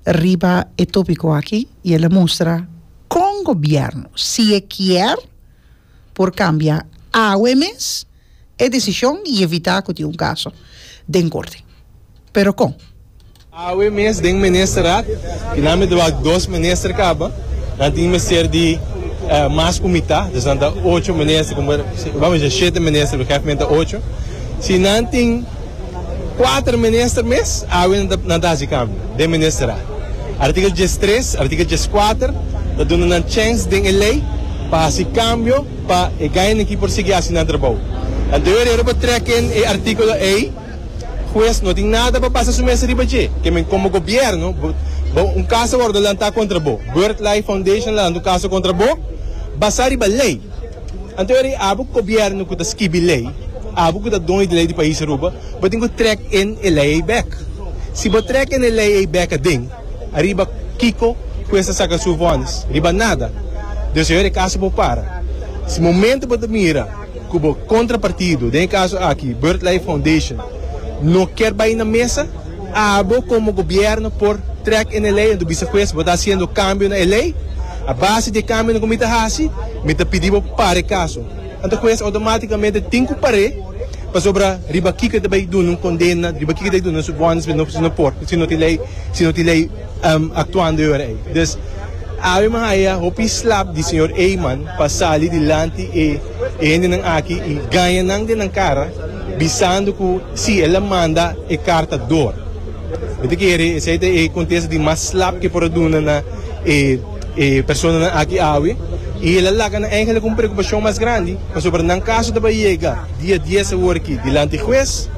riba e tópiko aki i el a mustra kon gobièrnu, si e kier, por kambia awe mes e desishon i evitá ku tin un kaso den korte. Pero kon? Awe mes den Ministerat, i nan mester wak dos minister kaba, nan tin mester di mas ku mitá, dus nan ta ocho minister, vamos a dice shete minister, pero hèf menta ocho. Si nan tin. Kuater minister mes awe nan ta hasi kambio den ministeral. Artikel diestres, artikel dieskuater ta duna nan chèns den e lei pa hasi kambio pa e gainikí por sigui hasi nan trabou. Anto e orero por trèk ken e artíkulo ei, hues no tin nada pa basa su mes riba dje. Ke men komo gobièrnu, bo un kas a wòrdu lantá kontra bo, Birdlife Foundation a lanta un kaso kontra bo basá riba lei. Anto eri abo gobierno ku ta skibi lei, abo ku ta doño di lei di pais Aruba, bo tin ku trek en e lei ei bek. Si bo trek en e lei ei bek aden, ariba kiko ku esta saka su vonnis? Riba nada. Desa yor e kaso por para. Si momento bo ta mira ku bo kontrapartido, den e kaso aki Birdlife Foundation, no kier bai na mesa, Abo komo gobièrnu por trèk en e lei, anto bisa pues bo ta hasiendo kambio na e lei? A base di e kambionan ku mi ta hasi, mi ta pidi bo para e kaso. Anto pues outomátikamente tin ku par'é pasobra riba kiko e ta bai duna un kondena, riba kiko e ta bai duna su bònus si no si no por, si no tin lei, si no tin lei aktuando e ora ei. Dus, Ave mi haya hopi slap di señor Eijman pa sali dilanti e hendenan aki i gaña nan den nan kara bisando ku Sí, el a manda e karta dor. Mi ta kere esei ta e kontesta di mas slap ke por a duna na e e personanan aki awe, i el a laga nan eingelik un preokupashon mas grandi, pasobra nan kaso ta bai yega dia dies awor aki dilanti hues,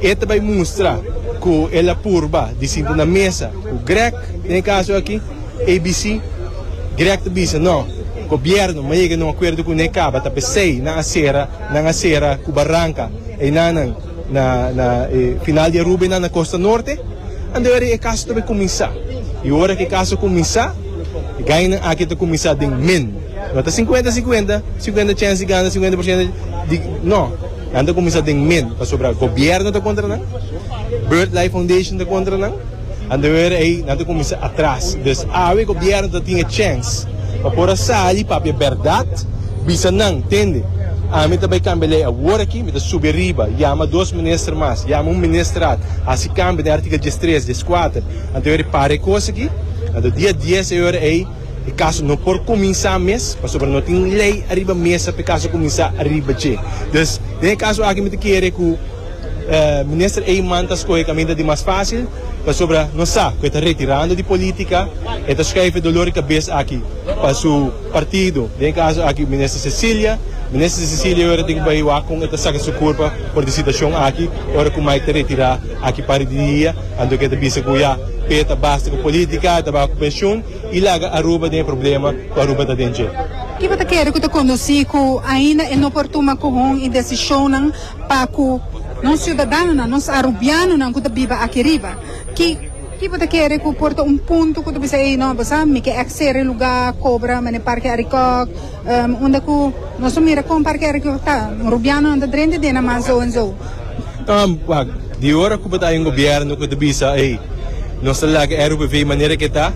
e ta bai mustra ku el a purba di sinta na mesa ku Grech den e kaso aki, abc. Grech ta bisa, No, gobièrnu no a yega na un akuerdo kuné, kaba ta p'esei nan a sera nan a sera ku baranka. Einanan na e final di e rubenan na Costa Norte, a deri e caso ta be cuminsa. Y ora cu e caso cuminsa, e gainan aki ta cuminsa den min. No ta cincuenta cincuenta, cincuenta chens di gana, cincuenta por ciento di, no. Nan ta cuminsa den min, pasobra gobierno ta contra nan, Bird Life Foundation ta contra nan. Nan ta wer ei, nan ta kuminsá atras. Dus awe gobièrnu ta tin e chèns pa por a sali papia bèrdat, bisa nan, Tende, ami ta bai kambia lei awor aki, mi ta subi riba, yama dos minister mas, yama un ministrat, hasi kambio den artikel dies tres, dies kuater. Nan ta wer e par e kos aki. A ta dia dies e ora ei, e kaso no por kuminsá mes, pasobra no tin lei ariba mesa pa e kaso kuminsá ariba dje. Dus den e kaso aki mi ta kere ku. Minister Eijman ta skohe kaminda di mas fásil pasobra nos sa ku e ta retirando di polítika. E ta skei fe dolor di kabes aki pa su partido. Den e kaso aki Minister Cecilia. Minister Cecilia yora tin ku bai wak kon e ta saka su kurpa for di situashon aki ora ku Mike ta retirá aki parti di dia. Anto ke ta bisa ku ya p'e ta basta ku polítika, e ta baku penshun i laga Aruba den e problema ku Aruba ta den dje. Kico ta kere ku ta kondusí ku ainda e no por tuma kohon i desishonnan? pa ku nos siudadanonan, nos arubianonan ku ta biba aki riba, ki ki bo ta kere ku por ta un punto ku ta bisa ei no bo sa mi ke eksere e lugá kobra manera Parke Arikòk unda ku nos ta mira kon Parke Arikòk ta rubianonan ta drenta den nan man sou en sou. Wak, di ora ku bo ta haña un gobièrnu ku ta bisa ei nos ta laga e RUPV manera ke ta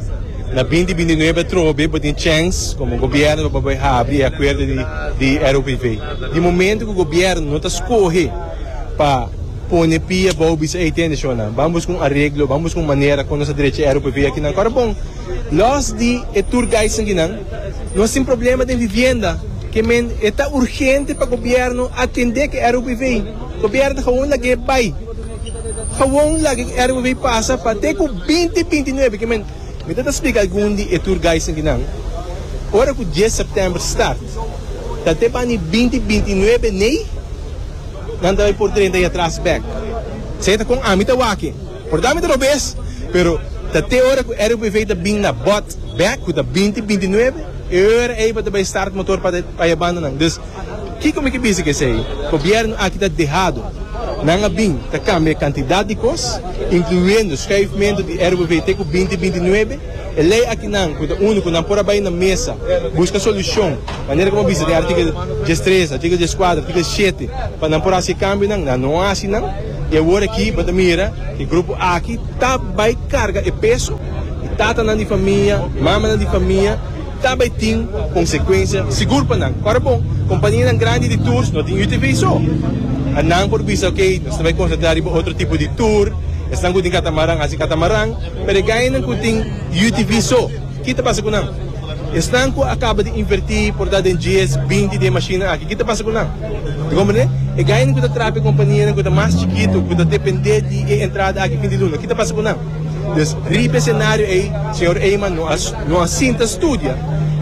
na binti binti nuebe atrobe bo tin chèns komo gobièrnu pa bo habri e akuerdo di RUPV. Di momento cu gobierno no ta scoge pa pone pia bao bisa ey tende shona, ban busca un areglo, ban busca un manera con nos ta drecha ero p'e via kinan. Ora bon, los di e tour guides nan kinan, nos tin problema den vivienda ke men e ta urgente pa gobierno atende ke ero p'e vei. Gobierno ta gewoon lag'e bay, gewoon lag'e ero p'e vei pasa pa te cu binti binti nuebe ke men. Mi ta ta splica algun di e tour guides nan kinan, ora cu dies september start, Ta te bani binti binti nuebe nei nan ta bai por trenta y atras bek. Sey ta kon ami ta wak e. Por ta mi ta robes pero ta te ora ku RUPV ta bin na bot bek ku ta binti binti nuebe e ora ey pa ta bai start motor pa ta e banda nan. Dus kiko mi ke bisa ku esey? Gobierno aki ta dehado. Nan a bin ta kambia e kantidat di kos inkluendo schuifmento di RUPV te ku binti binti nuebe. E lei akinan ku ta úniko nan por a bai na mesa buska solushon manera ku bo a bisa den artikel dies tres, artikel dies kuater, artikel shete pa nan por hasi e kambionan. Nan no a hasi nan i awor aki bo ta mira ku e grupo aki ta bai karga e peso i tatanan di famia, mamanan di famia ta bai tin konsekuensia sigur pa nan. Ora bon, kompanianan grandi di tours no tin UTV so a nan por bisa, ok nos ta bai konsentrá riba otro tipo di tur, esnan ku tin katamaran hasi katamaran. Pero e gaianan cu tin UTV so, ki ta pasa cu nan? Esnan cu a caba di inverti por ta den GS binti di e mashina aki, ki ta pasa cu nan? Ta comprende? E gaianan cu ta traha pa e companianan cu ta mas chikitu, cu ta depende di e entrada aki fin di luna, ki ta pasa cu nan? Dus, riba e scenario ey, señor Eyman no a sinta studia,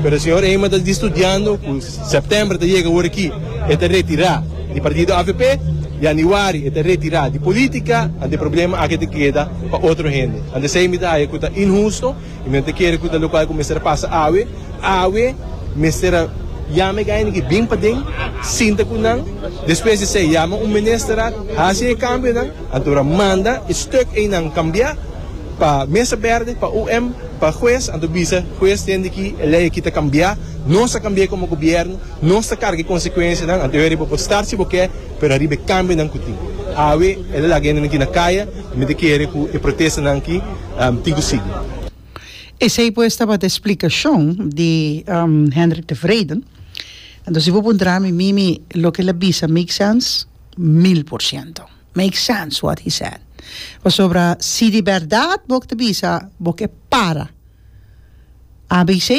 pero señor Eyman ta di studiando cu. September ta yega ora ki e ta retira di partido avp, Januari e ta retira di politica, ante e problema aki ta keda pa otro hende. Ante esey mi ta haya cu ta inhusto y mi no ta kere cu ta locual cu mester a pasa awe. Awe mester a yama e gaynan aki bin paden, sinta cu nan, despues di esey yama un Ministerraad, haci e cambionan, anto manda e stuk eynan cambia pa Mesa Berde, pa UM. Pa hues, anto bisa hues tende ki e ley aki ta cambia, nos ta cambia como gobierno, nos ta carga e consecuencianan, anto eri bo por star si bo ke, pero ariba e cambionan cu tin. Awe el a laga hende aki na caya, mi ta kere cu e protestanan aki tin cu sigui. Esey pues tabata e splicacion di Hendrik de Vreden. Anto si bo puntra mi, mimi loke el a bisa make sense? Mil por ciento. Make sense what he said pasobra si di berdad bo ta bisa bo ke para abc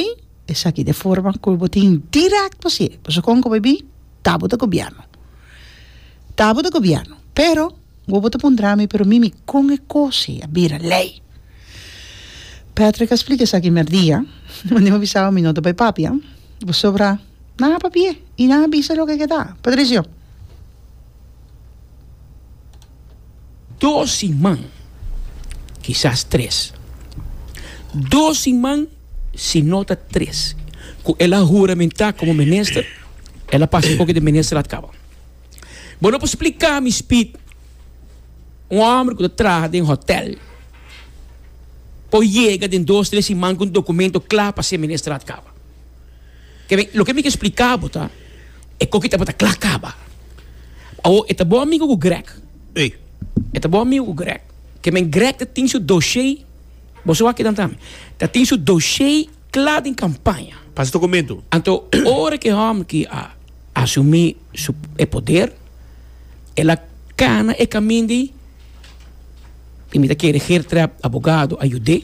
esaki ta e forma ku bo tin direkt pa sie pasobra kon ku bo a bin ta bo ta gobièrnu ta bo ta gobièrnu pero wo bo ta puntra mi pero mimi kon e kose a bira lei Patrick a splika esaki mierdia wende mi a bisa bo mi no ta bai papia pasobra nan a papia i nan a bisa loke a keda Patricio. Dos siman, kisas tres. Dos siman, si no ta tres, ku el a huramentá komo minister, el a pasa e koke di minister at kaba. Bo no por spliká mi, Speed, un hòmber ku ta traha den hòtèl, por yega den dos tres siman ku un dokumento kla pa se minister at kaba. Keren, loke mi ke spliká bo ta, e koki ta por ta kla kaba. Awor, e ta bon amigo ku Greg. Sí. E ta bon amigo ku Greg. Keren, Greg ta tin su doshé, boso wak kidan tambe, ta tin su doshé kla den kampaña. Pasa dokumentu. Anto, ora ku e hòmber ki a asumí su, e poder, el a kana e kaminda ei, i mi ta kere Geertruid, abogado, a yud'é.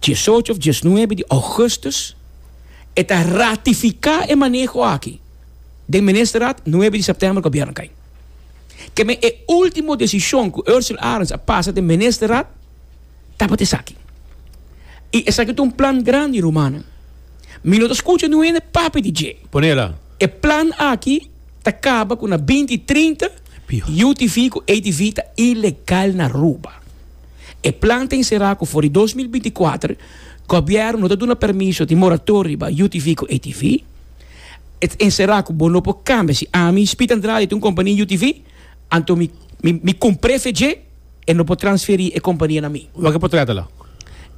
diesocho of diesnuebe di Augustus e ta ratifica e maneho aki den Ministerraad nuebe di September Gobierno cay. Keme e ultimo decision cu Ursel Arends a pasa den Ministerraad tabata esaki. Y esaki ta un plan grandi rumannan. Mi no ta scucha nuene papia di dje. Ponela. E plan aki ta caba cu na binti trinta UTV cu ATV ta ilegal na Aruba. E plan ta enserá ku for di dos mil binti kuater Gobièrnu no ta duna permiso di moratoria riba UTV ku ATV. E ta enserá ku bo no por kambia. Si ami, Speed Andrade, ta un kompania UTV, anto mi mi kumpr'é fe dje, e no por transferí e kompania na mi. Wak e por trata la.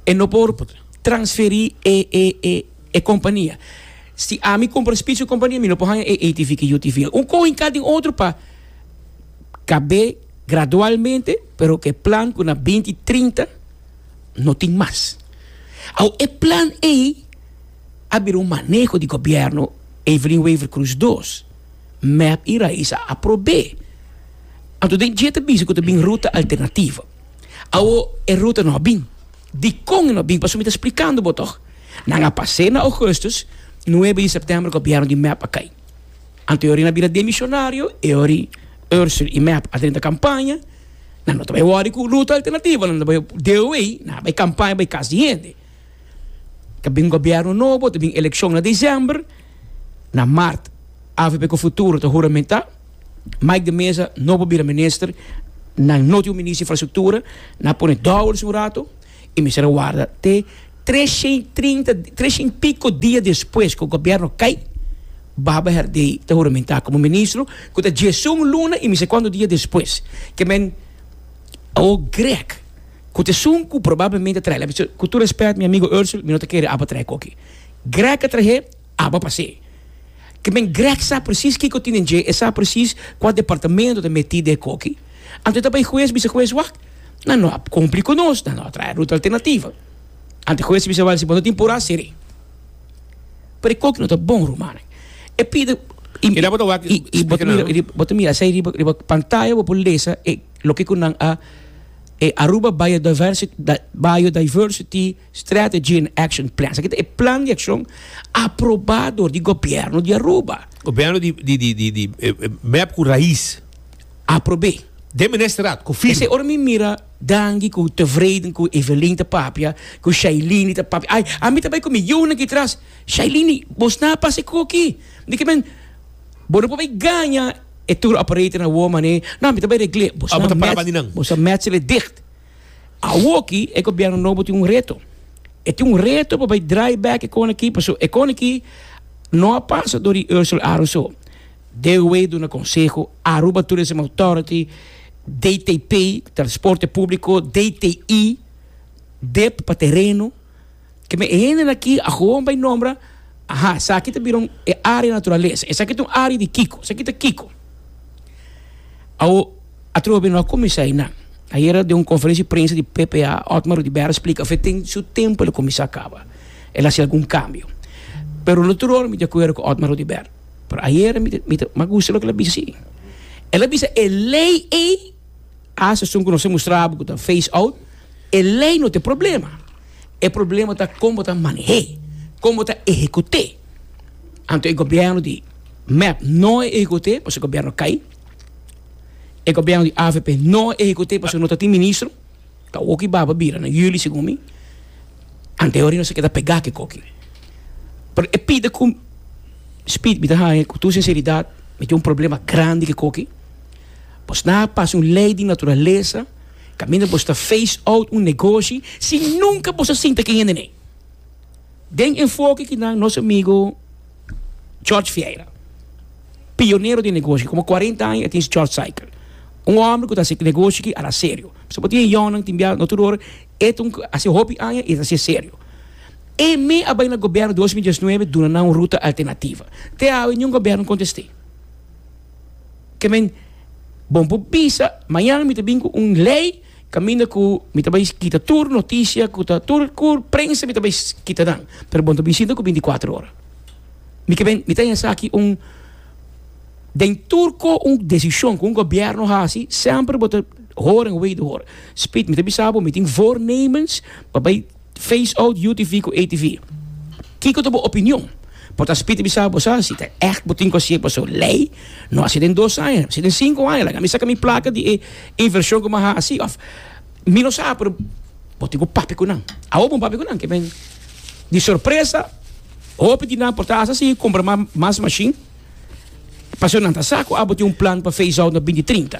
E no por transferí e e e e kompania. Si ami kumpra Speed su kompania mi no por haña e ATV ku UTV. Un kohe hinká den otro pa kab'é Gradualmente, pero cu e plan cu na binti trinta no tin mas. Awo e plan ey a bira un maneho di gobierno Evelyn Wever Croes dos, mep y rais a aprobé. Anto den dje ta bisa cu ta bin ruta alternativo. Awo e ruta no a bin. Dicon e no a bin? Pasobra mi ta splicando bo toch. Nan a pasé na augustus, nuebe di september gobierno di mep a cay. Anto e ori na bira demisionario, e ori Ursel i Mep a drenta kampaña, nan no ta bai wòri ku luta alternativo, nan ta bai deo ei, nan a bai kampaña bai kas di hende. Ta bin gobièrnu nobo, ta bin elekshon na desèmber, na mart avp ku futuro ta huramentá, Mike de Meza no por bira minister, nan no tin un minister di infrastruktura, nan a pone dòwel su ratu. E mester a warda te tresentrintatresent piko dia despues ku gobièrnu kai, Baba Herdey ta huramentá komo ministro, ku ta djesun luna i mi sa kuantu dia despues. Ke men Awo Grech, ku ta esun ku probablemente a trahe, ku tur rèspèt mi amigo Ursule, mi no ta kere aba trahe koki. Grech a trahe. Aba pas'e ke men Greg sa presis kiko tin den dje, e sa presis kua departamento ta meti den e koki. Anto e ta bai hues bisa hues, wak, nan no a kumpli ku nos, nan no a traha ruta alternativa. Anto e hues ta bisa wak, si bo no tin purá, ser'é. Pero e koki no ta bon, rumannan. E pide, i, i, i bo ta mira, i bo ta mira esei riba, riba pantaya bo por lesa e loke ku nan a, e Aruba Biodiversity, Biodiversity. Strategy and Action Plan. Esaki ta e plan di akshon aprobá dor di gobièrnu di Aruba. Gobièrnu di mèp ku rais aprob'é den Ministerat ku firma. Esei ora mi mira Dangi ku Tevreden ku Evelyn ta papia, ku Shailini ta papia, ai, ami ta bai ku mi yunan aki tras, Shailini, bo sna a pasa e koko aki? Di ke men, bo no por bai gaña e tour operator na wou mané. No, mi ta bai regl'é. Abo ta praba di nan. Bo sa mèt sele dicht. Awoki e gobierno nobo tin un reto. E tin un reto pa bai draai back e koneki paso e koneki no a pasa door di Ursel Aron so. DOW duna konseho, Aruba Tourism Authority, DTP, Transporte Publico, DTI, dip pa tereno. Ke me hende aki ahoan bai nombra, aha, esaki ta bira un e área naturalesa. Esaki ta un área di kiko? Esaki ta kiko? Awo, a trobe bira no kuminsá einan. Ayera den un konferensia di prensa di PPA, Otmar Oduber a splika of e tin su tempu el a kuminsá kaba, el a hasi algun kambio. Pero no tur ora mi ta di akuerdo ku Otmar Oduber. Pero ayera mi ta, mi ta mas gusta loke el a bisa si. El a bisa e lei ei, as asun ku nos a mustra bo ku ta phase out, e lei no ta e problema. E problema ta kon bo ta maneh'é, kon bo ta ehekut'é. Anto e gobièrnu di mep no a ehekut'é pasobra e gobièrnu a kai, e gobièrnu di avp no a ehekut'é pasobra no ta tin ministro, ta oki baba bira na yuli segun mi, anto hori nos a keda pegá ke koki. Pero e pida ku Spid mi ta haña ku tur sinseridat mi tin un problema grandi ke koki, bo sna pasa un lei di naturalesa. Kaminda bo sta face out un negoshi si nunka bo sa sinta ku e hende nei. Den enfoke ki nan nos amigo George Vieira, pionero den negoshi, komo kuarenta aña e tin su George Cycle. Un hòmber ku ta hasi negoshi ki ala serio. Pasobra bo tin e yònnan, tin biaha, no tur ora, e ta un hasi hopi aña i e ta hasié serio. E mi a bai na gobierno dos mil diesnuebe duna nan un ruta alternativa. Te awe niun gobierno kontest'é. ke men, Bon por bisa, mañana mi ta bin ku un lei kaminda ku mi ta bai kita tur notisia ku ta tur tur prensa mi ta bai kita nan, pero bon ta bin sinta ku bintikwatro ora. Mi ke ben, mi ta haña esaki un, den tur ko un desishon ku un gobièrnu hasi, semper bo ta horen wei di hora. Spit, mi ta bisa bo, mi tin voornemens pa bai Face out UTV ku ATV. Kiko ta bo opinion? Por ta spiti bisa bo sa si ta ègt bo tin ku hasié paso lei no hasié den dos aña, hasié den sinku aña laga mi saka mi plaka di e invershon ku mi a hasi òf mi no sa pero bo tin ku papia ku nan. Awo bo papia ku nan ke men di sorpresa hopi di nan por ta hasi si kumpra mas mashin paso nan ta sa ku abo tin un plan pa face out na binti trinta.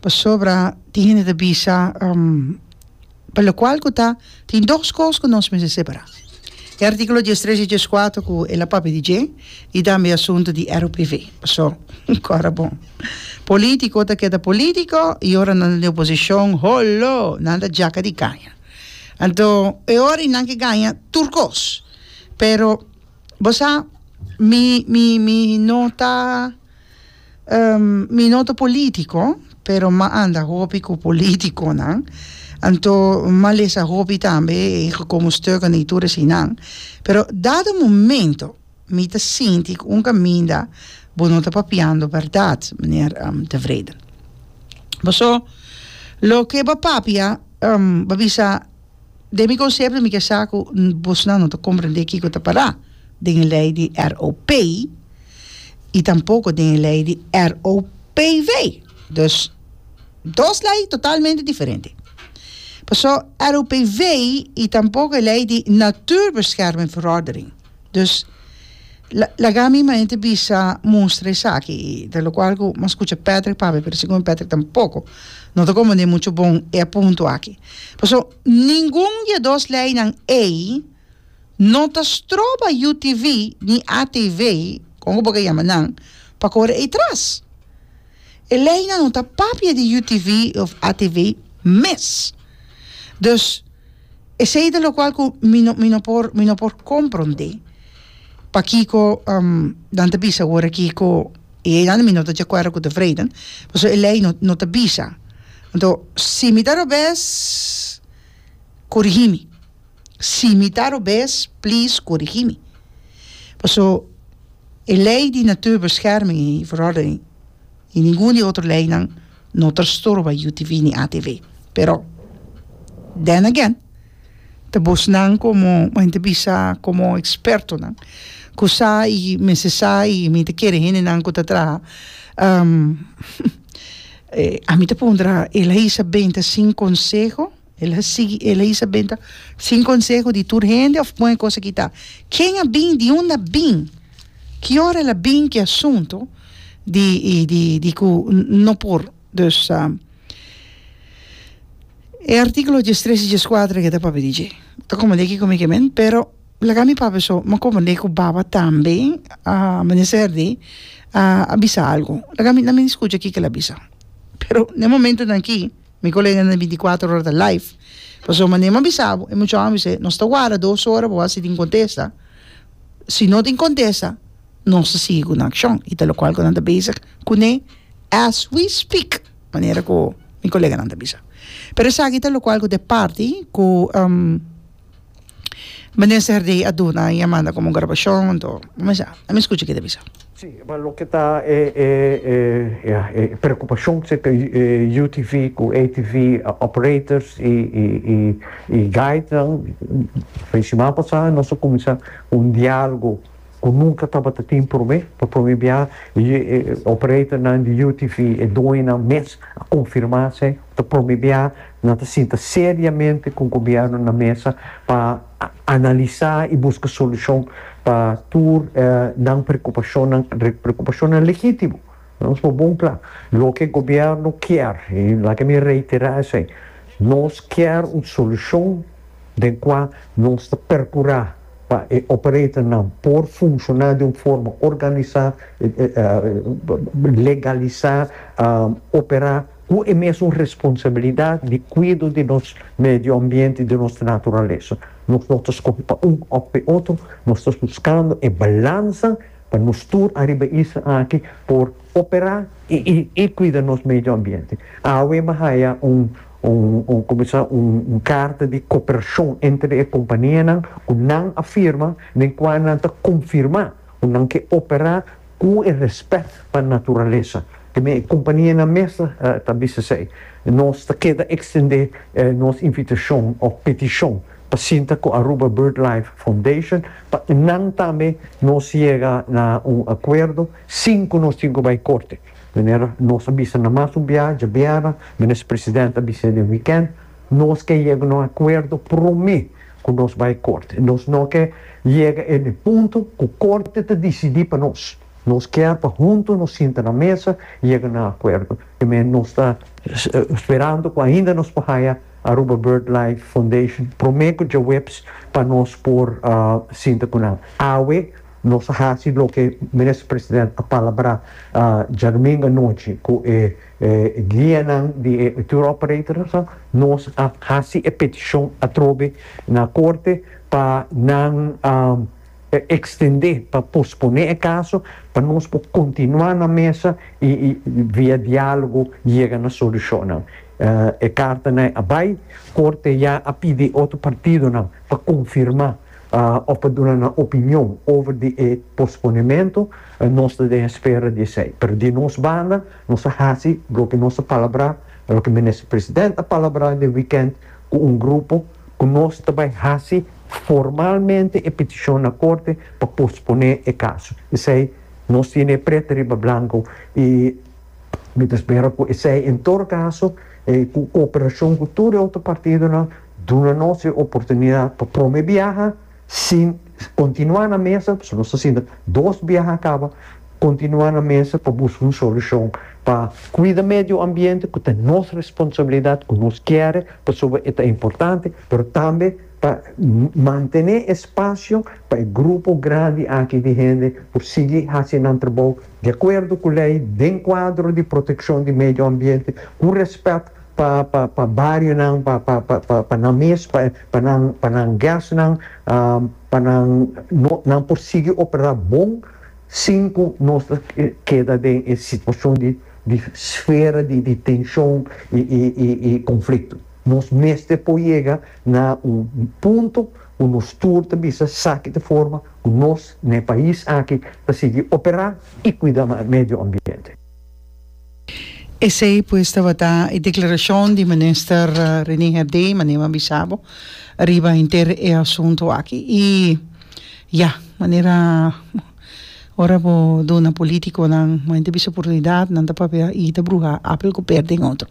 Pasobra tin hende ta bisa pa lokual ku ta tin dos kos ku nos mester separá. E artíkulo dies tres i dies kuater ku el a papia di dje i tambe e asuntu di ero privé. Pasó kòrda bon. Polítiko ta keda polítiko i ora nan ta den oposishon, holo! Nan ta djaka di kaña. Anto e ora i nan ke gaña tur kos. Pero bo sa mi mi mi no ta. Mi no ta politico pero m'a anda hopi cu politiconan anto m'a lesa hopi tambe e gekomen stukken den tur esinan pero dado momento mi ta sinti cu un caminda bo no ta papiando berdad meneer De Wrede pasobra loke ba papia ba bisa Den mi concepto mi ke sa ku bosnan no ta comprende kiko ta pará den e lei di ROP i tampoko den e lei di ROPV. Dus dos lei totalmente diferente. Paso ROPV i tampoko e lei di Natuurbeschermingsverordening. Dus laga mi mainta bisa mustra esaki i ta locual cu mas cucha Patrick papia pero segun Patrick tampoco no ta comprende mucho bon e a punto aki pasobra ningun di e dos leinan ei no ta stroba UTV ni ATV con bo ta yama nan pa cora ei tras e leinan no ta papia di UTV of ATV mes dus Esey ta locual cu mi no mi no por mi no por comprende pakico nan ta bisa awor aki cu e ley nan mi no ta deacuerdo cu ta vredan pasobra e ley no no ta bisa anto si mi ta robes corigi mi si mi ta robes please corigi mi pasobra e ley di natuur bescherming y verordening. Ni ningun di e otro leinan no ta sturba UTV ni ATV. Pero, then again, ta bosnan como, men ta bisa como expertonan, cu sa y mester sa y mi ta kere hendenan cu ta traha. Ami ta puntra, el a hisa benta sin conseho? El a sigui, el a yis a benta sin conseho di tur hende of pon e cosa kita. Ken a bin? Di unda a bin? Ki ora el a bin ki asunto di di ku no por? Dus e artikulo djes tres i djes kuater ke ta papia di dje ta komprende kiko mi ke men pero laga mi papia so mi a komprende ku baba tambe a menester di a bisa algu laga mi na mi skucha kiko el a bisa pero na e momentonan aki. Mi koleganan den binticuatro ora ta live, pasobra manera m'ha bisa bo e muchanan a bisa nos ta warda dos ora pa wak si tin contesta, si no tin contesta nos ta sigui cu nan accion y ta locual cu nan ta bezig cune as we speak manera cu mi coleganan ta bisa pero esaki ta locual cu ta e parti cu Minister Herdy a duna y a manda como grabacion enton a mester a mi scucha kico ta bisa. Sí, pero loke ta e e e ya e preocupacion serka e UTV cu ATV operators y y y y guidenan e siman pasa nos a cuminsa un dialogo cu nunca tabata tin prome, pa prome bia e operatornan di UTV e doñonan mes a confirma sey. ta promedia nan ta sinta seriamente cu gobierno na mesa pa analisa y busca solucion pa tur e nan preocupacionnan, preocupacionnan legitimo. Nos por bon cla, loke gobierno kier, y laga mi reitera esey, nos kier un solucion den cua nos ta percura pa e operator nan por funciona di un forma organisa, legalisa, opera. ku e mesun responsabilidat di kuido di nos medio ambiente, di nos naturalesa. Nos no ta skohe pa un òf pa e otro, nos ta buskando e balansa pa nos tur ariba isla aki por operá i kuida nos medio ambiente. Awe mi a haya un un como se llama un karta di koperashon entre e kompanianan ku nan a firma den kua nan ta konfirmá ku nan ke operá Ku e rèspèt pa naturalesa, teme e kumpanienan mes ta bisa esei, nos ta keda ekstendé nos invitashon òf petishon pa sinta ku Aruba BirdLife Foundation pa nan tambe nos yega na un akuerdo sin ku nos tin ku bai korte. Manera nos a bisa na mas un biaha djabiera, Minister Presidente a bis'é den wikènt, Nos ke yega na un akuerdo promé ku nos bai korte. Nos no ke yega en e punto ku korte ta disidí pa nos. Nos kier pa huntu nos sinta na mesa yega na akuerdo. P'emei nos ta sperando ku ainda nos por haya Aruba BirdLife Foundation promé ku djaweps pa nos por sinta ku nan. Awe nos a hasi loke Minister President a palabrá djadumingu anochi ku e E guianan di e tour operator so, nos a hasi e petishon atrobe na korte pa nan ekstendé, pa posponé e kaso pa nos por kontinuá na mesa i via diálogo yega na solushonnan. E kartanan a bai, korte ya a pidi otro partidonan pa konfirmá. òf pa duna nan opinion over di e posponementu, nos ta den espera di esei. Pero di nos banda, nos a hasi loke nos a palabrá, loke Minister President a palabrá den wikènt ku un grupo, ku nos ta bai hasi formalmente e petishon na Korte pa posponé e kaso. P'esei nos tene e pret riba blanko i mi ta spera ku esei, en todo kaso, ku koperashon ku tur e otro partidonan, Duna nos e oportunidad pa prome biaha sin continua na mesa, pasobra nos ta sinta dos biaha a caba, continua na mesa pa busca un solucion pa cuida medio ambiente cu ta nos responsabilidad cu nos kere pasobra e ta importante, pero tambe pa mantene espacio pa e grupo grandi aki di hende por sigui haci nan trabou di acuerdo cu ley den cuadro di proteccion di medio ambiente cu respet pa pa pa barionan pa pa pa pa pa nan mes pa pa nan pa nan guestnan pa nan no nan por sigui operá bon sin ku nos ta keda den e situashon di di sfera di di tenshon i i i i konflikto nos mester por yega na un punto ku nos tur ta bisa sa kit forma ku nos n'e pais aki ta sigui operá i kuida medio ambiente. Esei pues tabata e declaracion di Minister Rene Herdé, manera mi a bisa bo, riba henter e asunto aki. Y ya, manera ora bo duna politiconan momente bisa oportunidad, nan ta papia y ta bruha apel cu per den otro.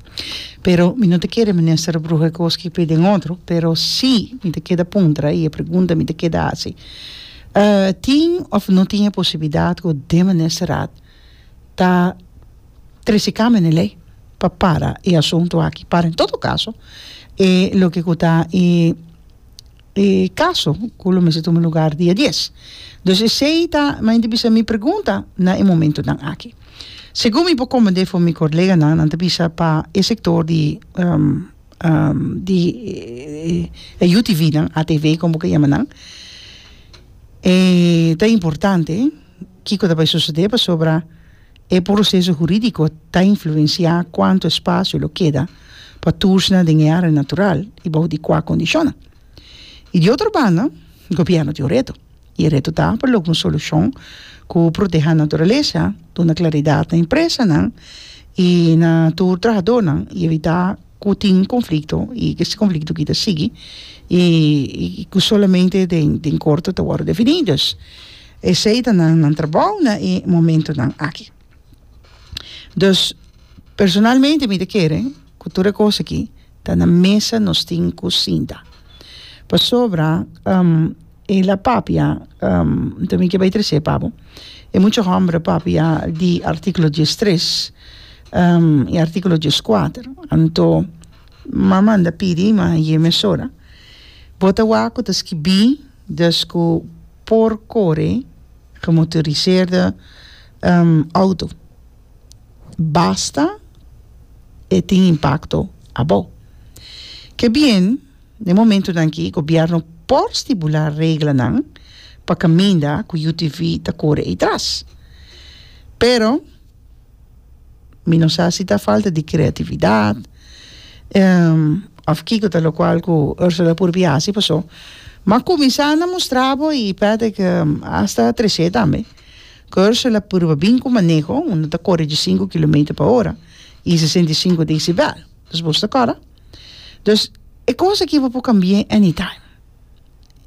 Pero mi no ta kere Minister a bruha e cos cu per den otro, pero si mi ta keda puntra y e pregunta mi ta keda haci, tin of no tin e posibilidad cu den Ministerrad ta trece kamernan lei pa para e asuntu aki para en todo kaso e loke ku ta e e kaso ku lo mester tuma lugar dia dies dus esei ta mi a inter bisa mi pregunta na e momentunan aki segun mi por komprende for mi koleganan nan ta bisa pa e sektor di di e yu tivi nan atv komo ke yama nan ta importante. Kiko ta bay sucedé pasobra e proceso juridico ta influenciá cuanto espacio lo keda pa tursnan den e area natural y bajo di cua condicionnan. Y di otro banda, gobierno tin un reto y e reto ta pa logra un solucion cu proteha naturaleza, duna claridad na empresanan y na tur trahadornan y evitá cu tin conflicto y cu ese conflicto aquí ta sigui y cu solamente den corto ta worde defini. Esei ta nan nan trabou na e momentunan aki. Dus, personalmente mi ta kere ku tur e kos aki ta na mesa nos tin ku sinta. Pasobra e la papia nta mi ke bai trese pa bo, e mucha hòmber a papia di artíkulo dies tres i artíkulo dies kuater. Anto mama manda pidi, ma ye mesora, bo ta wak ku ta skibí. Des ku por kore gemotoriseerde outo, basta e tin impakto abo. Ke bien, den momentunan aki gobièrnu por stibulá reglanan pa kaminda ku UTV ta kore eitras. Pero. Mi no sa si ta falta di creatividad of kico ta locual cu Ursula por a haci pasobra m'a cuminsa a mustra bo y Patrick hasta atrece tambe cu Ursula por a bin cu maneho unda ta core dje cinco kilometer pa ora y sesenta y cinco decibel dus boso ta acorda dus e cos aki bo por cambia any time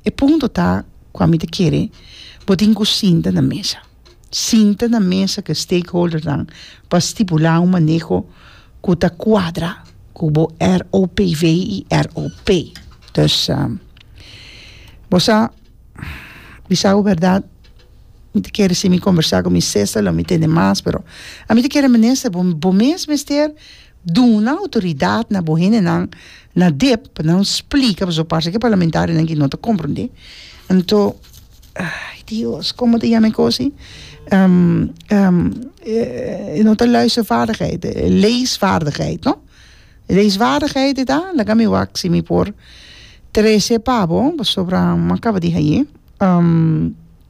e punto ta cu ami ta kere bo tin cu sinta na mesa. sinta na mesa ku e stakeholdernan pa stipulá un maneho ku ta kuadra ku bo ROPV i ROP. Dus, bo sa, bisa bo bèrdat, mi ta kere si mi kombersá ku mi sesa lo mi tende mas, pero ami ta kere, Minister, bo mes mester Duna outoridat na bo hendenan na dep pa nan splika pasobra parse ke parlamentarionan aki no ta komprondé anto ai dios komo ta yama e kosi e no ta luistervaardigheid e leesvaardigheid no leesvaardigheid eta laga mi wak si mi por trese pa bo pasobra mi a kaba di haye.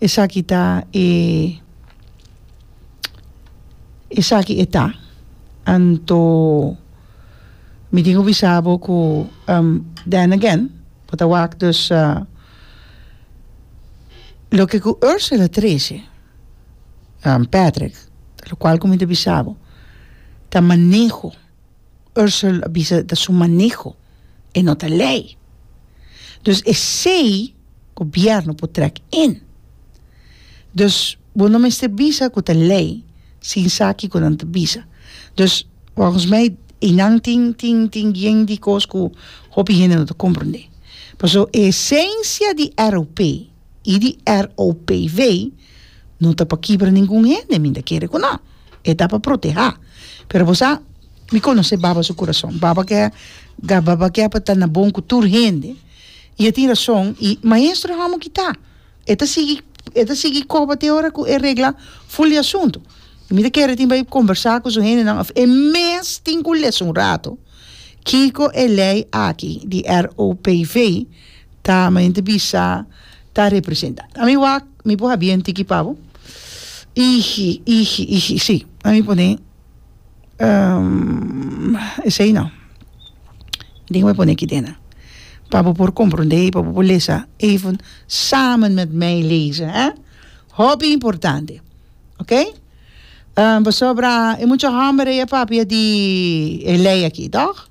esaki ta e esaki e ta anto mi tin ku bisa bo ku then again bo ta wak dus loke ku Ursula trese Patrick lokual ku mi ta bisa bo ta maneho. Ursel a bisa ta su maneho, e no ta lei. Dus esei gobièrnu por trèk in. Dus bo no mester bisa ku ta lei sin sa kiko nan ta bisa. Dus volgens mij einan tin tin tin bien di kos ku hopi hende no ta komprondé. Paso e esensia di ROP y di ROPV no ta pa kibra ningun hende mi ta kere cu no e ta pa proteha pero bo sa mi conoce baba su corazon baba ke baba ke pa ta na bon cu tur hende y e tin razon y maestro amo kita e ta sigui e ta sigui coba te ora cu e regla ful di asunto y mi ta kere tin bay conversa cu su hendenan of e mes tin cu lesa un rato kico e ley aki di ROPV Ta mente bisa ta representa a mi wak mi por habia en tiki pabo iji iji iji si a mi pone esei no mi tin kiba pone kidena pa bo por compronde pa bo por lesa even samen met mij lezen he hopi importante okay pasobra e mucha homber ey a papia di e ley aki toch.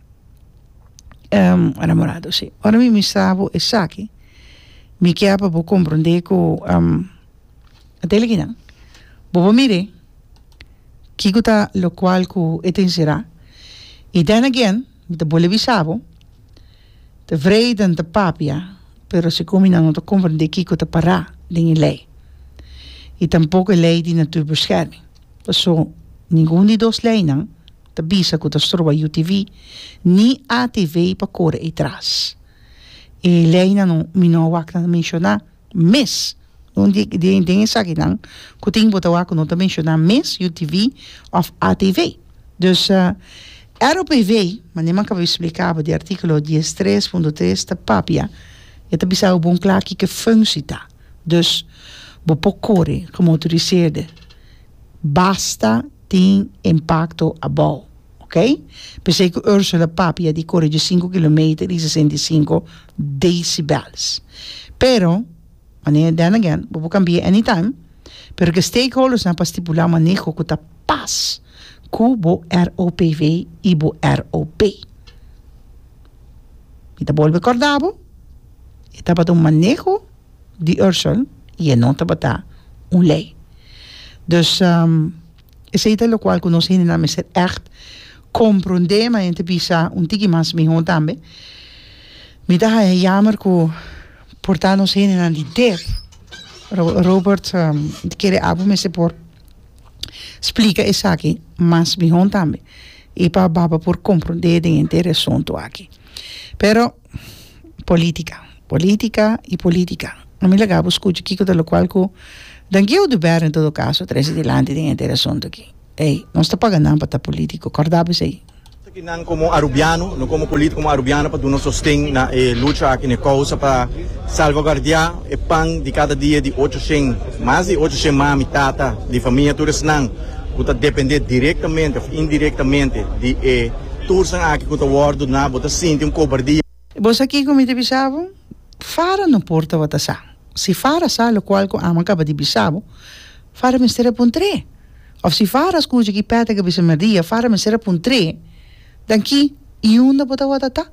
enamorado si ora mi mester bo esaki mi kier pa bo comprende cu ata eliki nan bobo mire kico ta locual cu e ta encera y then again mi ta bolui bisa bo ta wreda ta papia pero segun mi nan no ta comprende kico ta para den e ley y tampoco e ley di natuur bescherming paso ningun di dos ley nan Ta bisa cu ta stroba UTV ni ATV pa core ey tras. E leynan mi no a wak na menciona mes. Un den esakinan cu tin bo ta wak cu no ta menciona mes UTV of ATV. Dus ROPV, manera mi a caba di splica bo di articulo dies tres punto tres ta papia, e ta bisa bo bon cla kico e funcci ta. Dus bo por core como motoriseerde basta. tin impacto abou, ok. P'esei cu Ursula papi a di core dje sinku kilometer di sesenta i sinku decibels. Pero, manera den again, bo por cambia anytime, pero c'e stakeholdersnan por stipula maneho cu ta pas cu bo ROPV y bo ROP. Mi ta bolbe corda bo, e tabata un maneho. di Ursel y e no tabata un ley. Dus esey ta locual cu nos hendenan mester echt compronde, ma enten bisa un tiki mas miho tambe. Mi ta haja yamer cu por ta nos hendenan di def, Robert di kere abu mester por splica esaki mas miho tambe y pa baba por compronde den entero e asunto aki. Pero. Politica, politica y politica. A mi laga bo scucha kico ta locual cu Dangieu de Bèren en todo caso trece dilanti den e entero asunto aki. Ey, nos ta paga nan pa ta politico, corda bo esey. Esaki nan como Arubiano, no como politico como Arubiano pa duna sosten na e lucha aki, na e causa pa salvaguardia e pan di cada dia di ocho shen, mas di ocho shen mami, tata, di famia tur esnan. ku ta dependé direktamente òf indirektamente di e tursnan aki ku ta wòrdu duna, bo ta sinti un kobardia. I bo sa kiko mi ta bisa bo? Fara no por tabata sa. Si Fara sa lokual ku Ama kaba di bisa bo, Fara mester a puntr'é. Òf si Fara a skucha ki Pèt a ka bisa mèrdia, Fara mester a puntr'é. Dan ki i unda bo tabata ta?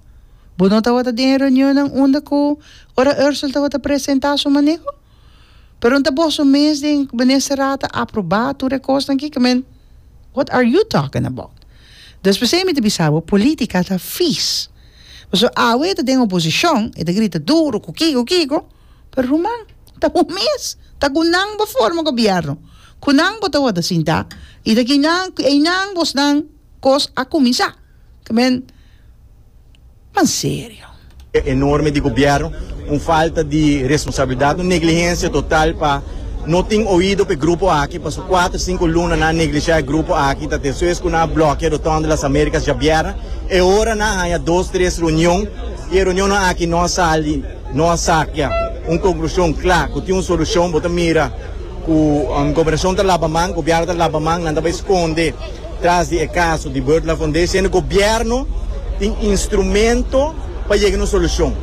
Bo no tabata den e reunionnan unda ku ora Ursel tabata presentá su maneho? Pero nta boso mes den minister a ta aproba tur e kosnan ki? Kmen, what are you talking about? Despues ei mi ta bisa bo, politica ta vies. Paso awe e ta den oposicion, e ta grita duro cu kico kico, pero ruman, ta un mes, ta cu nan bo forma gobierno, cu nan bo ta worde sinta y ta kinan, cu einan bosnan, Kos a kuminsá kmen mas serio. Enorme di gobièrnu, un falta di responsabilidat, un neglihensia total pa no tin oido pa e grupo aki, paso kuater sinku luna nan a neglishá e grupo aki, ta ta esoes ku nan a blokia Rotonda Las Américas djabièrna, e ora nan a haña dos tres reunion i e reunionnan aki no a sali, no a sakia un konklushon kla ku tin un solushon, bo ta mira ku gobernashon ta laba man, gobièrnu ta laba man, nan ta bai skonde. Tras di e kaso di Bird Lafon Diciendo Gobierno tin instrumento pa yega na un solushon.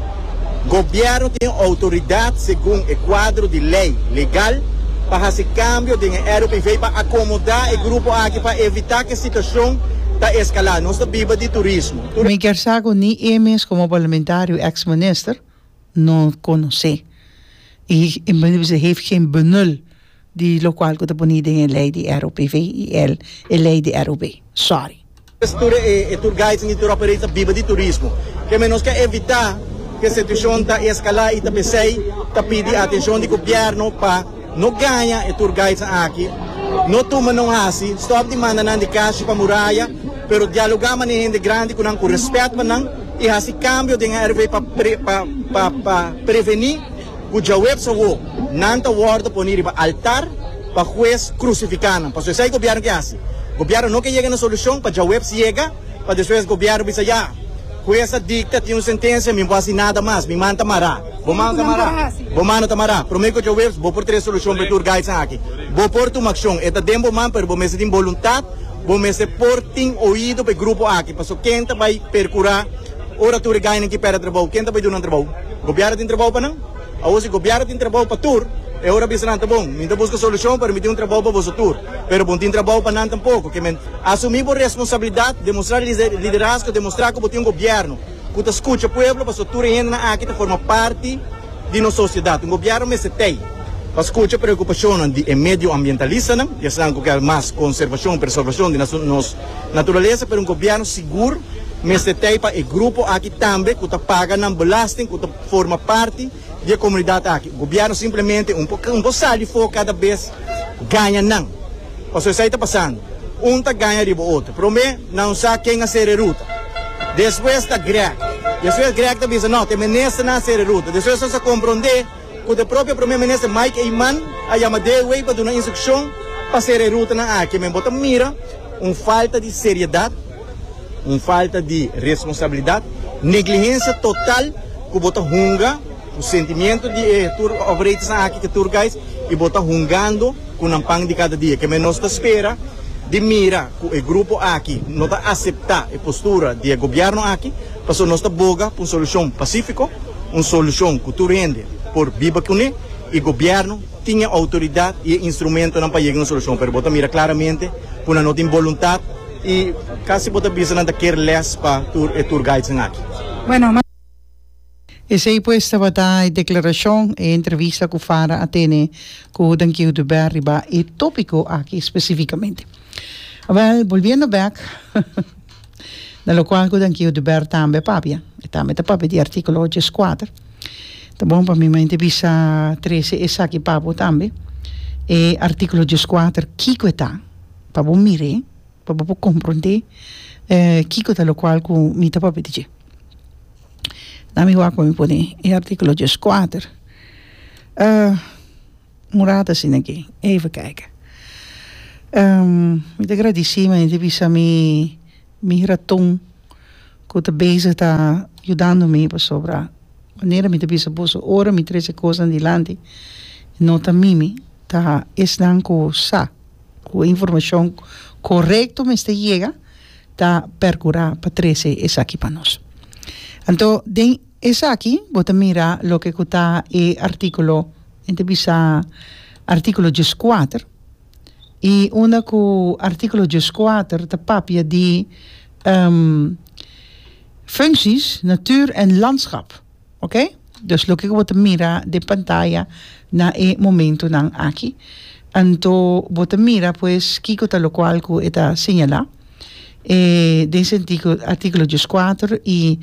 Gobierno tin outoridat segun e kuadro di lei legal pa hasi kambio den e ROPV pa akomoda e grupo aki pa evita ku e situashon ta eskalá. Nos ta biba di turismo. Mi kier sa ku ni e mes komo parlamentario ex minister no konosé. E mense heeft geen benul. Di locual cu ta poni den e ley di ROPV y el e ley di ROB. Sorry. Kes tur e e tour guides en di tour operators ta biba di turismo. Keme nos ke evita ku e situacion ta escala y ta pesey ta pidi atencion di gobierno pa no gaña e tour guides aki, no tuma no hasi, stop di manda nan di cashi pa muraya, pero dialoga mane hende grandi cu nan cu respet pa nan y hasi cambio den ROPV pa pa pa preveni Ku djaweps awo nan ta wòrdu poni riba altar pa hues krusifiká nan. Pasobra esei gobièrnu ke hasi. Gobièrnu no ke yega na solushon pa djaweps yega, pa despues gobièrnu bisa, Ya, hues a dikta, tin un sentensia, mi no por hasi nada mas. Mi man ta mará. Bo man ta mará. Bo man no ta mará. Promé ku djaweps bo por trese solushon pa e tour guides nan aki. Bo por tuma akshon. E ta den bo man, pero bo mester tin boluntat, bo mester por tin oido pa e grupo aki, pasobra ken ta bai perkurá? Ora tur e gainan ki pèrdè trabou, ken ta bai dunan trabou? Gobièrnu tin trabou pa nan? Awor si gobièrnu tin trabou pa tur, e ora a bisa nan, Ta bon, mi ta buska solushon pa rmití un trabou pa boso tur, pero bo no tin trabou pa nan tampoko. Ke men asumí bo responsabilidat, demostrá liderazgo, demostrá ku bo tin un gobièrnu ku ta skucha pueblo, pasobra tur e hendenan aki ta forma parti di nos sosiedat. Un gobièrnu mester tei pa skucha preokupashonnan di e medioambientalistanan, ya senan ku kèr mas konserbashon, preservashon di nos. Naturalesa, pero un gobierno sigur mester tei pa e grupo aki tambe cu ta paga nan belasting, cu ta forma parti di e comunidad aki. Gobierno simplemente un por, un por sa di for cada bes ganja nan. Pasobra esai ta pasando. Un ta ganja riba otro. Prome nan un sa ken a sere ruta. Despues ta Grech. Despues Grech ta bisa, no, ta e ministernan a sere ruta. Despues nos a compronde. cu ta propio Primer Minister Mike Eman a yama deawey pa duna instruccion pa cera e rutanan aki. Men bo ta mira un falta di seriedad, un falta di responsabilidad, negligencia total cu bo ta hunga cu sentimiento di e tour operators nan aki, e tour guides, y bo ta hungando cu nan pan di cada dia. Kemen nos ta spera di mira cu e grupo aki no ta acepta e postura di e Gobierno aki. Pasobra nos ta boga pa un solushon pasífiko, un solushon ku tur hende por biba kuné i gobièrnu tin e outoridat i e instrumentonan pa yega na un solushon. Pero bo ta mira klaramente ku nan no tin boluntat i kasi bo ta bisa nan ta ker lès pa tur e tour guidesnan aki. Esei pues tabata e deklarashon, e entrevista ku Farah a tene ku Dankie Huduber riba e tópiko aki espesífikamente. Wèl, bolbiendo bèk. Na lokual ku Dankiu de Bèrt tambe a papia, e tambe ta papia di artíkulo ocho es kuater. Ta bon pa mi men te bisa Trece esaki pa bo tambe, e artíkulo ocho es kuater kiko e ta, pa bo mir'é, pa bo por komprondé kiko ta lokual ku mi ta papia di dje. Na mi wak pa mi pone e artíkulo ocho es kuater. Un rato asina ke. Even kijke. Mi ta gradisí mi hende bisa mi mi raton ku ta bezig ta yudando mi pasobra manera mi ta bisa boso ora mi trese kosnan dilanti no ta mimi ta esnan ku sa ku e informashon korekto mester yega ta perkurá pa trese esaki pa nos anto den Esaki bo ta mira loke ku ta e artíkulo, men ta bisa artíkulo djes kuater, i unda ku artíkulo djes kuater ta papia di funsies, natuur en landskap, oke. Dus loke ku bo ta mira den pantaya na e momentunan aki, anto bo ta mira pues kiko ta lokual ku e ta señalá. e den sentido artículo dies kuater i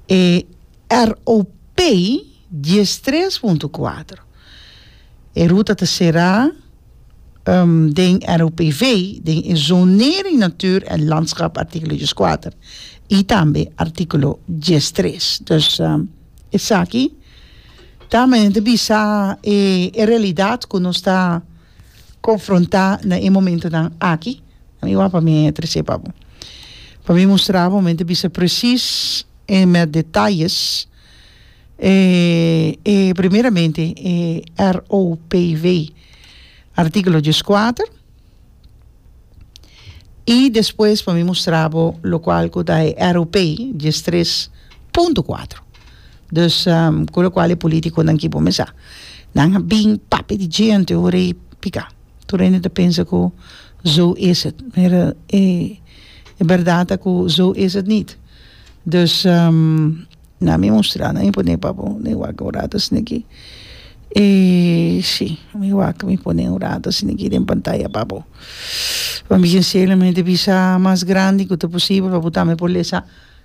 e ROP dies tres punto kuater e ruta ta será den ROPV den e zonering natuur en landschap artículo dies kuater i tambe artículo dies tres dus esaki ta men ta bisa e realidad ku nos ta konfrontá na e momentunan aki, mi wou pa mi tresé pa bo, pa mi mustra bo, mi ta bisa presis e mèt detayes e primeramente e ROPW artíkulo dies kuater i despues pa mi mustra bo lokual ku ta e ROP dies tres punto kuater. Dus cu locual e politiconan ki bo mesa nan a bin papia di djente ora y pica tur hende ta pensa cu zo is het pero e berdad ta cu zo is het niet dus nan mi mustra nan mi pone pa bo nan mi wak un rato asina aki e si nan mi wak mi pone un rato asina aki den pantaya pa bo pa mi sinceramente bisa mas grandi cu ta posibel pa bo tambe por lesa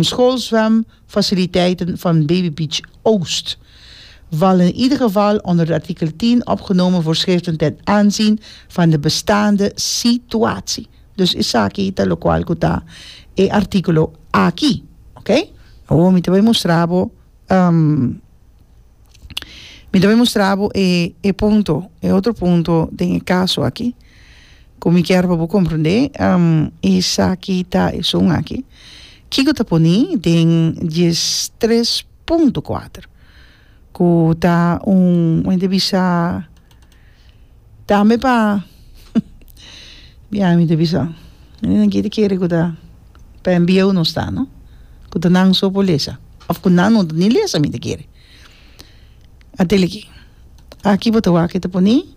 Schoolzwem faciliteiten van Baby Beach Oost vallen in ieder geval onder de artikel tien opgenomen voorschriften ten aanzien van de bestaande situatie. Dus esaki ta locual cu ta e articulo aki. Ok? Awor mi ta bay mustra bo mi ta bay mustra bo e punto, e otro punto den e caso aki. Cu mi kier pa bo comprende esaki ta e son aki. Kico ta poni den dies tres punto cuater cu ta un como mi ta bisa tambe pa biaha mi ta bisa e nan kita kere cu ta pa enbieu nos ta no cu ta nan so por lesa of cu nan no ta ni lesa mi ta kere a tele aki aki bo ta wak e ta poni.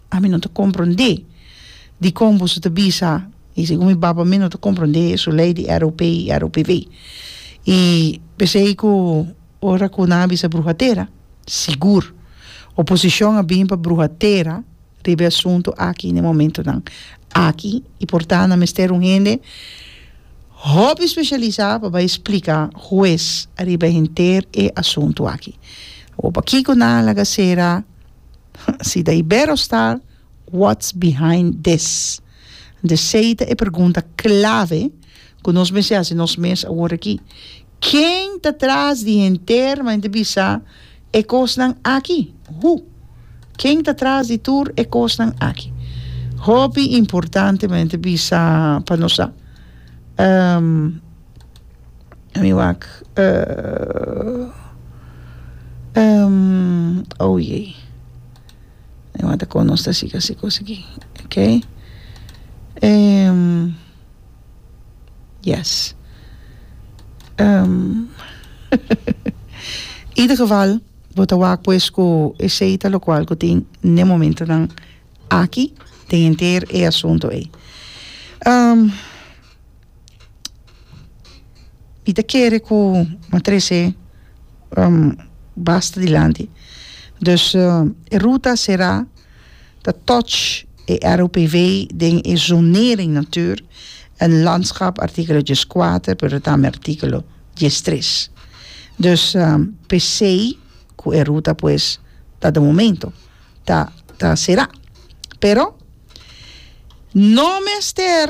Ami no ta komprondé dikon boso ta bisa i segun mi baba mi no ta komprondé su lei di ROP i ROPV. I p'esei ku ora ku nan a bisa bruha tera, sigur oposishon a bin pa bruha tera riba e asuntu aki n'e momentunan aki i por tantu a mester un hende hopi speshalisá pa bai spliká hues riba henter e asuntu aki. Awor pakiko nan a laga sera? Si ta Iberostar, what's behind this? Desei ta e pergunta clave cu nos mester haci nos mes aworaki. Ken ta tras di henter mante bisa e cosnan aki? Who? Ken ta tras di tur e cosnan aki? Hopi importante mante bisa pa nos sa. mi wak oyey mi wak ta kono sta siga si kos aki ok yes ieder geval bo ta wak pues ku esei ta lokual ku tin n'e momentonan aki den henter e asuntu ei. Mi ta kere ku mi trese basta dilanti dus e ruta a sera ta toch e ROPW den e zonering natuur en landschap artikelo dies kuater pero tambe artikelo dies tres dus pesei ku e ruta pues ta de momento ta ta sera pero no mester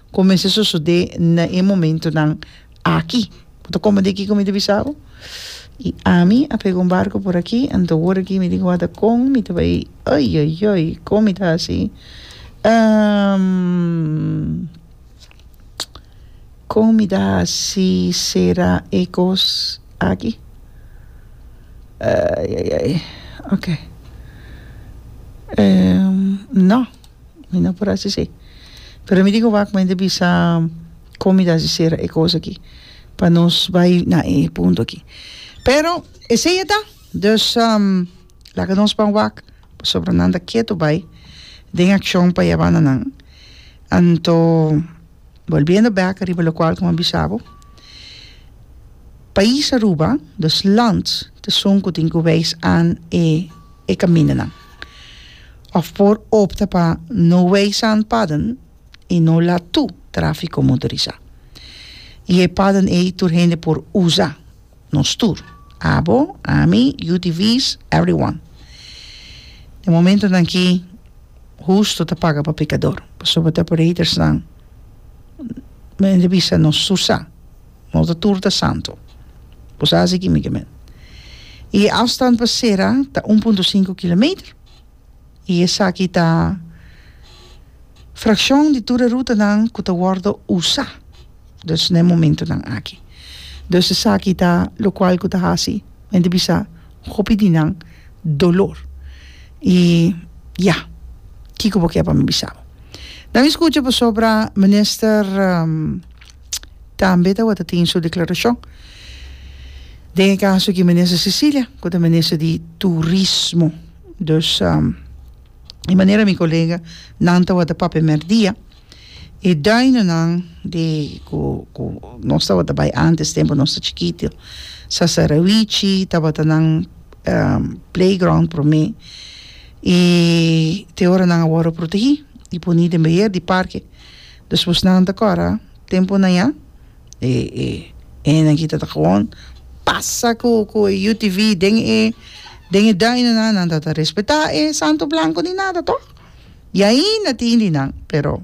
Cu mester sosode na e momentonan aki? Bo ta comprende kico mi ta bisa bo? Y ami a pega un barco por aki, anto ora ki mi tin wata con mi ta bay, oioioi, con mi ta haci? con mi ta haci cera e cos aki? Oioioi, ok. No. Mi no por hasi esei. Pero mi tin ku wak mente bisa kon mi ta hasi sera e kos aki pa nos bai na e punto aki. Pero esei a ta. Dus laga nos ban wak pasobra nan ta ketu bai den akshon pa yabana nan. Anto bolbiendo bek riba lokual ku mi a bisa bo, pais Aruba, dus land, ta esun ku tin ku weis an e kamindanan. Of por opta pa no weisa un paden y no laat tu trafico motorisa. Y e paden ey tur hende por usa, nos tur, abo, ami, UTV's, everyone. E momentonan aki husto ta paga pa pecador, pasobra ta operators nan, men hende bisa nos tur sa. Nos ta tur ta santu. Bo sa hasi kimikamente. I e afstand pa sera ta un punto sinku kilometer. I esaki ta frakshon di tur e rutanan ku ta wòrdu usá, dus na e momentunan aki. Dus esaki ta lokual ku ta hasi men ta bisa hopi di nan dolor. I ya, kiko bo ke pa mi bisa bo? Dami skucha pasobra Minister. tambe tabata tin su declaracion den e caso aki Minister Cecilia cu ta Minister di Turismo dus di manera mi colega nan tabata pa primer dia e duinonan di cu cu nos tabata bay antes tempo nos ta chikito sasarawichi tabata nan play ground prome y te ora nan a worde protegi y poni den beheer di parke Despues nan ta kòrda tempunan ya e e hendenan kita ta gewoon pasa ku ku e UTV den e den e duinennan nan ta ta respetá e santo blanko ni nada tòg i ainda tin di nan pero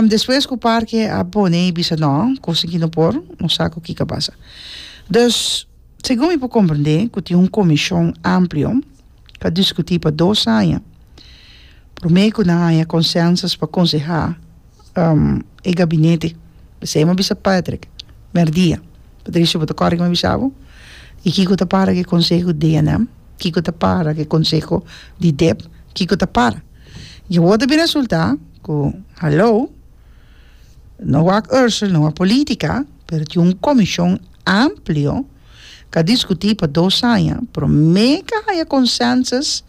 despues ku parke a pone i bisa nò kos aki no por no sa ku ki ta basa dus. Segun mi por comprende cu tin un comision amplio cu a discuti pa dos aña prome cu nan a haya consensus pa conseha e gabinete esey mi a bisa Patrick merdia Patricio bo ta acorda cu mi a bisa bo y kico ta para cu e conseho di DNM kico ta para cu e conseho di dep kico ta para y awor ta bira resulta cu halo No wak Ursel, no a politica, pero tin un comision amplio ca discuti pa dos aña, prome ca haya consensus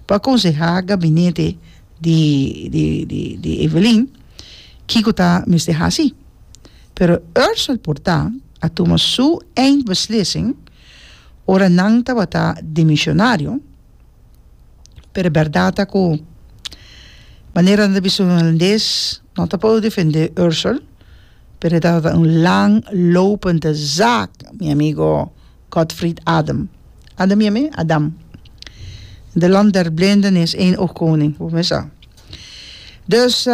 pa aconseha gabinete di di di di Evelyn kico ta mester haci. Pero Ursel por ta a tuma su eindbeslissing ora nan tabata dimisionario, pero e bèrdat ta ku manera nan ta bisa un holandes no ta por defendé Ursel pero e tabata un lang lopende zaak mi amigo Godfrid Adam Adam yami? Adam de land der blinde nees één oog koning bo me sa dus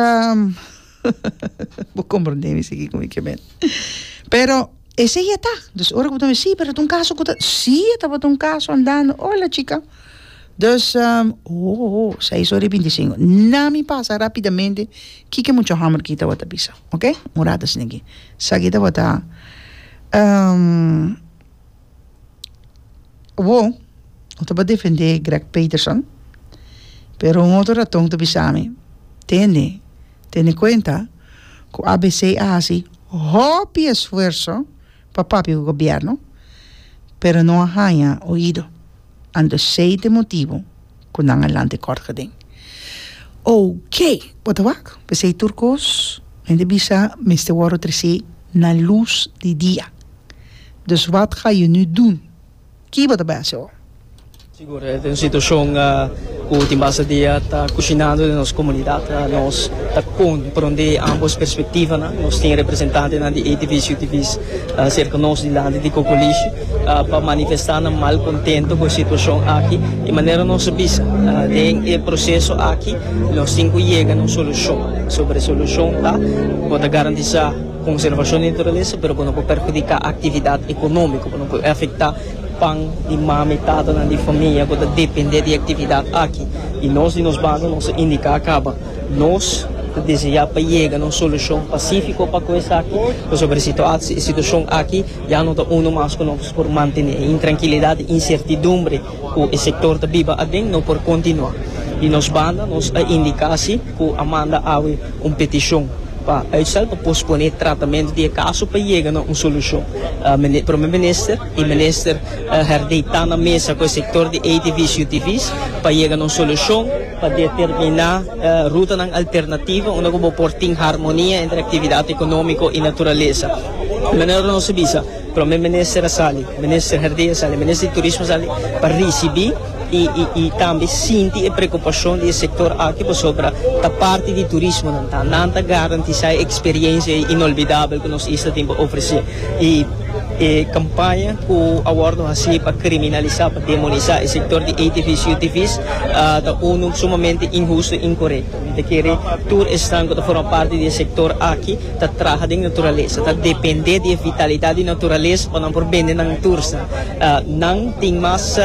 Bo komprondé mi sigi ku mi ke mende. Pero esei e ta. Dus ora ku bo ta bisti si pero e ta un kaso ku ta si e tabata un kaso andando ola chika dus ohoho seis ora i binti sinku na mi pasa rapidamente ki ke mucho hamber ki tabata bisa oke un rato asina aki esaki tabata. Awor, no ta por defendé Greg Peterson, pero un otro raton ta bisa mi, Tene, tene kuenta ku ABC a hasi hopi esfuerso pa papia ku gobièrnu, pero no a haña oido. Anto esei ta e motibu cu nan a lanta e kort gaden. Ok! Bo ta wak? P'esei tur cos men ta bisa mester worde trece na luz di dia. Dus wat ga yo nu dun? Ki bo ta bai haci awor? Siguro e ta un situacion cu tin basta dia ta cucinando den nos comunidad. Nos ta con prende ambos perspectivanan. Nos tin representantenan di e divis y divis. Serka nos dilanti di Kokolishi pa manifesta nan mal kontento ku e situashon aki i manera nos a bisa den e proseso aki nos tin ku yega na un solushon sobra e solushon ta ku ta garantisá konservashon di naturalesa pero ku no por perhudiká aktividat ekonómiko ku no por afektá pan di mama i tatanan di famia ku ta dependé di e aktividat aki i nos di nos banda nos a indiká kaba Nos ta deseá pa yega na un solushon pasífiko pa kue esaki, pasobra e situashon aki ya no ta unu mas ku nos por mantené. E intrankilidat i insertidumbre ku e sektor ta biba aden no por kontinuá. Di nos banda, nos a indiká si ku a manda awe un petishon pa uitstel pa posponé e tratamentu di e kaso pa yega na un solushon. Prome Minister i Minister Herdey ta na mesa ku e sektor di ATV's i UTV's pa yega na un solushon. Pa determiná rutanan alternativo unda ku bo por tin harmonia entre aktividat ekonomiko i naturalesa. Manera ku nos a bisa, Prome Minister a sali, Minister Herdey a sali, Minister di Turismo a sali pa risibí i tambe sinti e preokupashon di e sektor aki pasobra ta parti di turismo nan ta. Nan ta garantisá e eksperiensia inolbidabel ku nos isla tin pa ofresé. I e kampaña ku awor nos a hasi pa kriminalisá. Demonisá e sektor di ATV's i UTV's ta unu sumamente inhustu i inkorekto. Mi ta kere tur esnan ku ta forma parti di e sektor aki ta traha den naturalesa, ta dependé di e vitalidat di naturalesa pa nan por bende nan tursnan. Nan tin mas,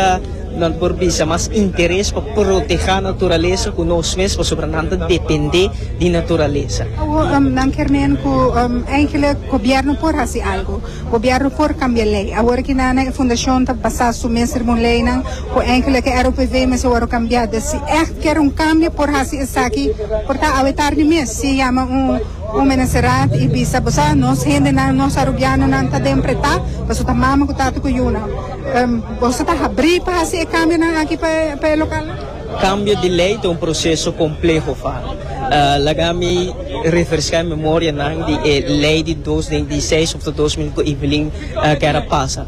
nan ta por bisa, mas interes pa protehá naturalesa ku nos mes pasobra nan ta dependé di naturalesa. Awo nan kier men ku, èigelik, gobièrnu por hasi algu. Gobièrnu por kambia lei. Awor aki nana e fundashon ta basá su mes riba un leinan ku enki lo ke ROPV mester wòrdu kambiada. Si ègt kier un kambio por hasi esaki por ta awe tardi mes. Si yama un menesteraat i bisa boso, nos hendenan, nos arubianonan ta den pretá pasobra ta mama ku tata ku yunan. Boso ta habrí pa hasi e kambionan aki pa e lokal? Cambio di ley ta un proceso compleho fa. Laga mi refresca e memoria nan di e ley di dos den di seis of ta dos mil cu Evelyn Guerra pasa.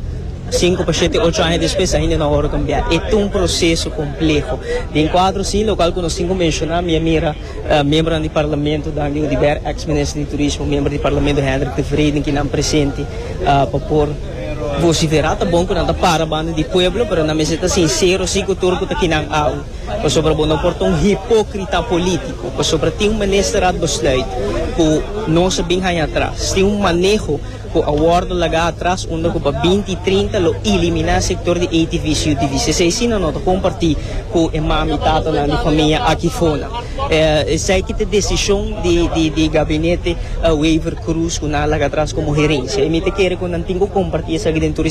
Cinco pa shete ocho aña despues ainda no a worde cambia. E ta un proceso compleho. Den cuadro sin lo cual cu nos tin cu menciona mi a mira miembronan di parlamento dan di Oduber, ex minister di turismo, miembro di parlamento Hendrick de Wreden kinan presente pa por Vociferá ta bon cu nan ta para banda di pueblo, pero nan mester ta sincero si cu tur cu ta kinan awe, pasobra bo no por ta un hipocrita politico, pasobra tin un Ministerraadbesluit cu no sa bin haña atras, tin un maneho cu a wordo lagá atras unda cu pa binti trinta lo eliminá sector di ATVs y UTVs. Esei si nan no ta comparti cu e mami, tatanan di famia aki fona. Esei ki ta desishon di gabinete Wever Croes ku nan a laga atras komo herensia. Mi ta kere ku nan tin ku kompartí esaki den tur e.